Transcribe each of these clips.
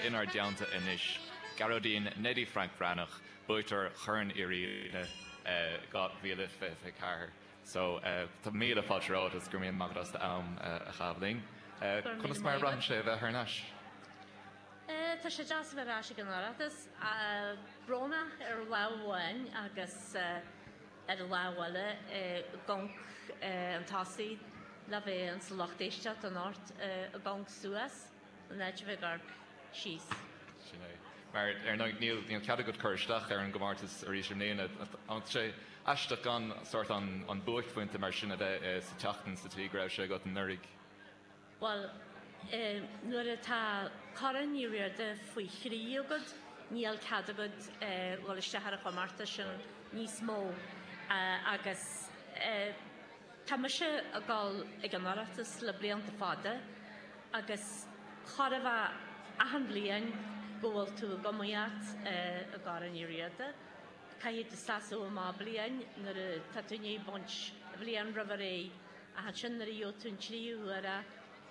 Inár dteannta anois, Gearóidín Neidí Frainc Breathnach, buaiteoir Chorn Uí Riada 2024. So, tá míle fáilte romhat agus go raibh maith agat as do am a chaitheamh linn. Conas mar a bhraitheann sé a bheith thar n-ais? Tá sé deas a bheith ar ais ag an Oireachtas. Brónach ar lámh amháin agus. Ar an lámh eile, go gcaithfidh tusa a bheith insa lucht éisteacht in áit a ghabháil suas, an áit a bheith ag amharc síos. Sin é. Mar, ar ndóigh, níl cead agat cur isteach ar an gcomórtas arís i mbliana. Tá sé aisteach gan sórt an buaicphointe mar sin a bheith sa tseachtain sa tslí go raibh sé agat anuraidh. Bhuel, nuair atá Corn Uí Riada faoi thrí agat, níl cead agat dhul isteach ar an chomórtas sin níos mó. Agus tá mise ag dul chuig an Oireachtas le blianta fada agus chóir a bheith achan bhliain go bhfuil tú ag iomaíocht i gCorn Uí Riada. Caithfidh tú seasamh amach bliain nuair atá tú i ndiaidh baint bhliain roimh ré Ach ansin nuair a gheobhann tú an tríú huair é,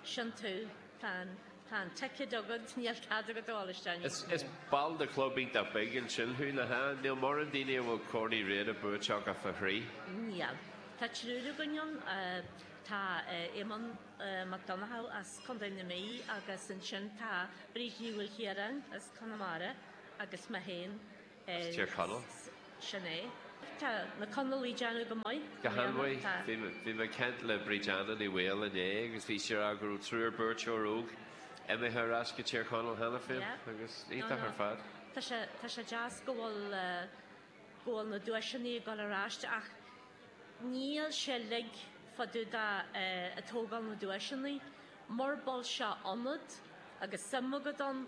sin tú, tá an, tá an ticket agat, níl cead agat a dhul isteach níos mó. Is ball de chlub iontach beag ansin thú, nach ea? Níl mórán daoine a bhfuil Corn Uí Riada buaite acu fá thrí. Níl. Tá triúr againn ann, tá Éamonn Ó Donnchadha as Contae na Mí agus ansin tá Bríd Ní Mhaoilchiaráin as Conamara agus mé féin. as Tír Chonaill. sin é. Tá na Conallaigh ag déanamh go maith. Go han-mhaith, tá. Bhí mé ag caint le Bríd Anna Ní Bhaoill inné agus bhí sí ag rá go raibh triúr buaiteoir óg imithe ar ais go Tír Chonaill cheana féin yeah. agus éacht ar fad. Tá sé, tá sé deas go bhfuil, uh, go bhfuil na duaiseanna ag dul ar ais ach Níl sé uilig fá dtaobh de ag tógáil na duaiseanna. Mura bhfuil sé ionat agus suim agat ann,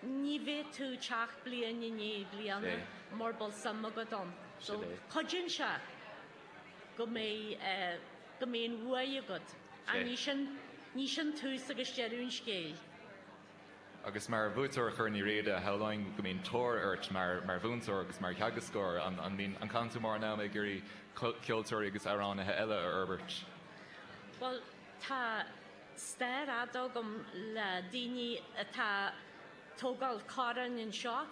ní bheidh tú ag teacht bliain i ndiaidh bliana mura bhfuil suim agat ann. So, cuidíonn sé go mbeidh go mbíonn an bhuaidh agat. Ach ní sin ní sin tús agus deireadh an scéil. Agus mar bhuaiteoir Chorn Uí Riada, shamhlóinn go mbíonn tóir ort mar mhúinteoir agus mar theagascóir. An gcaitheann tú mórán ama ag iarraidh ceoltóirí agus amhránaithe eile a fhorbairt? Bhuel, tá stair fhada agam le daoine atá ag tógáil corn anseo.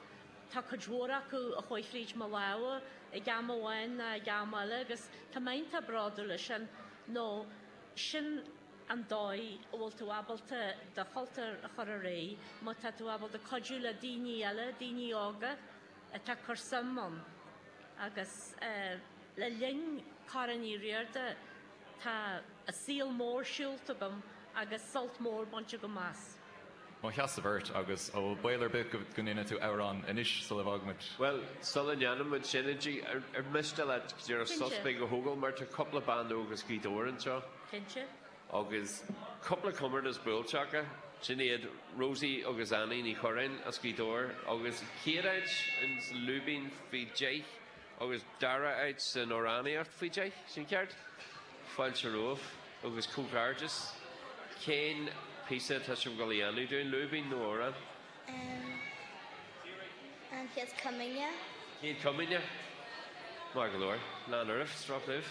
Tá cuid mhór acu a chuaigh fríd mo lámha ag am amháin ná ag am eile agus tá mé iontach bródúil as sin, nó sin, an dóigh a bhfuil tú ábalta do chultúr a chur ar aghaidh, má tá tú ábalta cuidiú le daoine eile, daoine óga atá ag cur suim ann. Agus le linn Corn Uí Riada, tá saol mór siúlta agam agus sult mór bainte agam as. Mo sheasamh ort, agus an bhfuil baol ar bith go ndéana tú amhrán anois sula bhfága muid. Bhuel, sula ndéana muid sin, a Dee, ar mhiste leat dá ndéarfá suas a thógáil, mar tá cúpla bean óg as Gaoth Dobhair anseo. Cinnte. Agus cúpla comórtas buaite acu, sin iad Rosie agus Annie Ní Chuireáin as Gaoth Dobhair, agus chéad áit sa lúibín faoi deich, agus dara áit san amhránaíocht faoi deich, sin ceart? Fáilte romhaibh agus comhghairdeas! Cén píosa atá sibh ag goil a dhéanamh dúinn? Lúibín nó amhrán? Amh. An Chéad Comaoine. Céad Comaoine. Maith go leor. Lean oraibh. Sroicheamh.